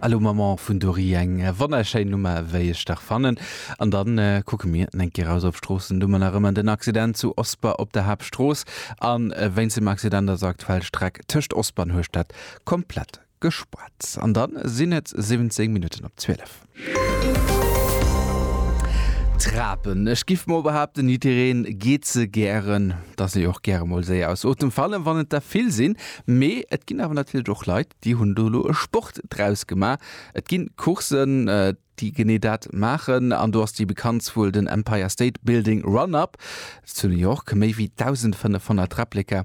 Allô Maman vun Dory, eng wonnerschéin Nummer wéi ech dach fannen. An dann kucke mir eng Kéier raus op d'Stroossen, du mer nach ëmmer den Accident zu Osper op der Haaptstrooss an wéinst dem Accident ass aktuell d'Streck tëscht Osper an Hueschtert komplett gespaart. An dann sinn et 17 Minutten op 12. Trapen, ech giff mol behaapten jiddereen geet se gären, dass si och gäre mol séier aus Otem fallen, wann et der vill sinn. Mee et ginn awer natierlech och Leit, déi hunn do elo e Sport draus gemaach. Et gi Coursen, déi genee dat maachen an do ass déi bekanntst wuel den Empire State Building Run-Up zu New York, méi wéi 1.500 Replika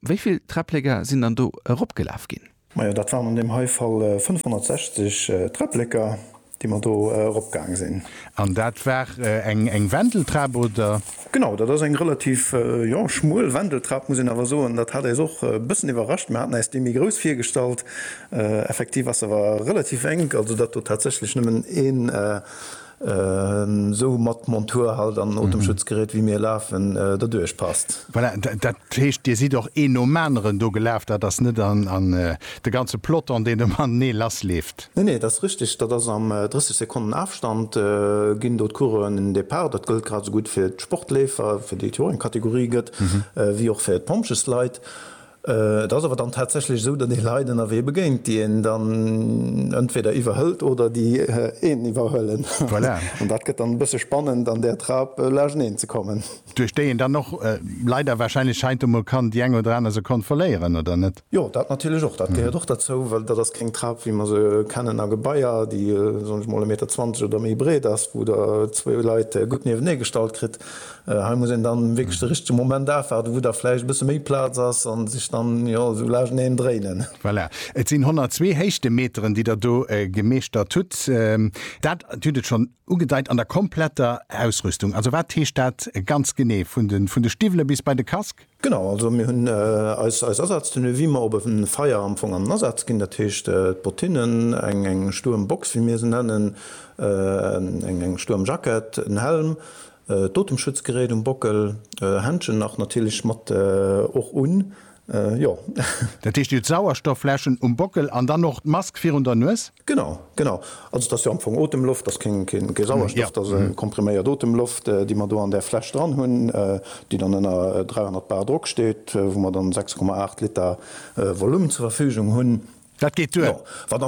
Wéi vill Träplécker sinn dann do eropgelaf ginn? Majo, dat waren an deem hei Fall 560 Träplécker, déi mer do eropgaang sinn. An dat war eng Wendeltrap, oder? Genau, dat ass eng relativ, jo, schmuel Wendeltrap, muss een awer soen. Dat hat äis och e bëssen iwwerrascht. Mer haten äis déi méi grouss virgestallt. Effektiv ass se awer relativ enk, also datt do tatsächlech nëmmen ee Esou mat Montur halt an Otemschutzgerät wéi mir lafen derduerch passt. Voilà, dat heescht Dir sidd och een nom aneren do gelaf, dat ass net de ganze Peloton deen ëm anenee lass leeft? Nee, nee, dat ass richteg, dat ass am 30 Sekonnen Afstand ginn do d'Coureuren den Depart. Dat gëllt grad esou gutt fir d'Sportleefer, fir déi et jo eng Kategorie gëtt, wéi och fir d'Pompjeesleit. Et ass awer dann tatsächlech esou, datt ee Leit ënnerwee begéint, déi een dann entweder iwwerhëlt oder déi een iwwerhuelen. Voilà. An dat gëtt dann e bësse spannend, an där Trap lageneen ze kommen. Duerch déi een dann och leider warscheinlech heiansdo mol kann déi eng oder aner Sekonn verléieren, oder net? Jo, dat natierlech och. Dat gehéiert och derzou, well dat ass keng Trap, wéi mer se kennen a Gebaier, déi, soen ech mol, e Meter zwanzeg oder méi breet ass, wou Der zwou Leit gutt niewenee gestallt kritt. Hei muss een dann wierklech de richtege Moment afwaarden, wou da vläicht e bësse méi Plaz ass an sech dann, jo, esou laaschteneen dréinen. Voilà, et sinn 102 Héichtemeteren, déi Der do gemeeschtert hutt. Dat, Dir hutt et schonn ugedeit, an der kompletter Ausrüstung. Also wat heescht dat ganz genee, vun de Stiwwele bis bei de Casque? Genau, also mir hunn eis Asatztenue wéi mer op e Feier am Fong an Asaz ginn. Dat heescht, d'Bottinnen, eng stuerm Box wéi mir se nennen, eng stuerm Jackett, en Helm, d'Otemschutzgerät um Bockel, Händschen nach natierlech mat och un, jo. Dat heescht, dir hutt Sauerstoffläschen um Bockel an dann och d'Mask virun der Nues? Genau, genau. Also et ass jo am Fong Otemloft, et ass keng Sauerstoff, et ass kompriméiert Otemloft, déi mer do an där Fläsch dran hunn, déi dann ënner 300 bar Drock steet, wou mer dann 6,8 Liter Volume zur Verfügung hunn. Dat geet duer. Wat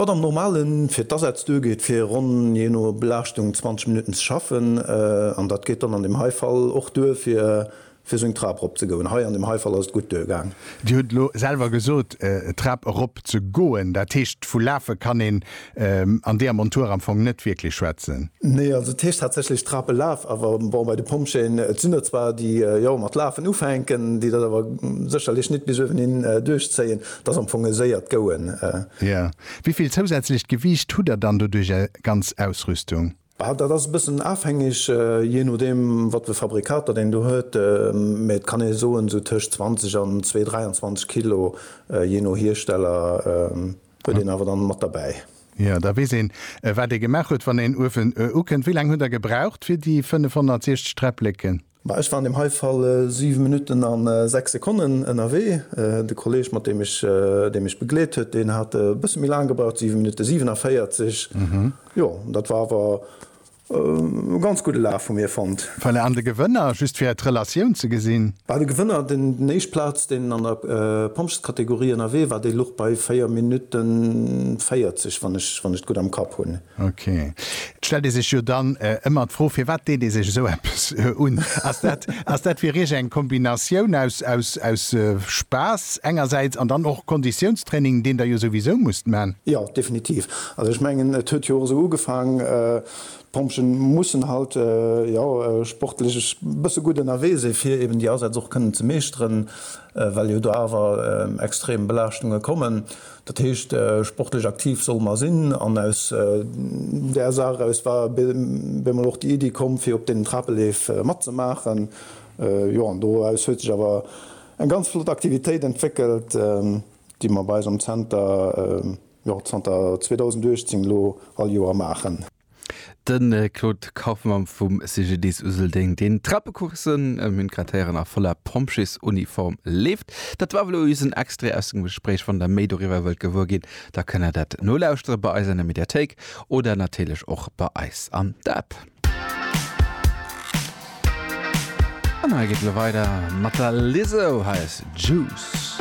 am Normale fir d'Asätz duergeet, fir ronn, jee no Belaaschtung, 20 Minutten ze schaffen. An dat geet dann an deem hei Fall och duer, fir Fir seng Trap rop ze goen. Hei an dem hei Fall ass et gutt duer gaang. Dir hutt elo selwer gesot, d'Trap erop ze goen. Dat heescht, vu lafe kann een an deeër Montur am Fong net wierklech schwätzen. Nee, also et heescht tatsächlech Trap elaf. Awer bon, bei de Pompjeeën, et sinn der zwar, déi jo mat lafen ufänken, déi dat awer sécherlech net bis uewen hin duerchzéien. Et ass am Fong e séiert Gouen. Jo. Wéi vill zousätzlecht Gewiicht hutt der dann doduerch, är ganz Ausrüstung? Dat ass e bëssen afhängeg, jee nodeem wat fir Fabrikater deen do huet, mä et kann ee soen esou tëscht 20 an 2, 23 Kilo, jee no Hiersteller, huet een awer dann mat derbäi. Jo, da weess een, wat ee gemaach huet, wann een Uefen ukënnt. Wéi laang hutt Der gebraucht fir déi 560 Träppleken? Ma ech war an deem hei Fall 7 Minutten a 6 Sekonnen ënnerwee. De Kolleg, mat deem ech, dee mech begleet huet, deen hat e bësse méi laang gebraucht, 7 Minutte 47. Jo, dat war awer e ganz gudde Laf vu mir fonnt. Voilà, an de Gewënner, just fir d'Relatioun ze gesinn? Bah, de Gewënner, deen éischt Plaz, deen an der Pompjeeskategorie ënnerwee war, dee luch bei 4 Minutte 40, wann ech et gutt am Kapp hunn. Ok. Et stellt ee sech jo dann ëmmer d'Fro, firwat deet ee sech esou eppes un? Ass dat, ass dat fir Iech eng Kombinatioun aus, aus, aus Spaass engersäits an dann och Konditiounstraining, deen Der jo souwisou musst man? Jo, definitiv. Also ech mengen, et huet jo och esou ugefaang, d'Pompjeeën mussen halt, jo, sportlech e bësse gutt ënnerwee si fir eben déi Asätz och kënnen ze meeschteren, well jo do awer extrem Belaaschtunge kommen. Dat heescht, sportlech aktiv solle mer sinn. An aus där Saach eraus war bie mol och déi Iddi komm, fir op deenen Trapeleef matzemaachen. Jo, an doraus huet sech awer eng ganz flott Aktivitéit entwéckelt, déi mer bei eis am Zenter, jo, zanter 2018 elo all Joer maachen. De Claude Kaufmann vum CGDIS Useldeng, deen Trappecoursen ëm Une Cratère a voller Pompjeesuniform leeft. Dat war elo just en Extrait aus dem Gespréich. Wann der méi doriwwer wëllt gewuer ginn, da kënn der dat nolauschtere bei eis an der Mediathéik oder natierlech och bei eis an der App. An hei geet elo weider mat der Lizzo. Hei ass Juice.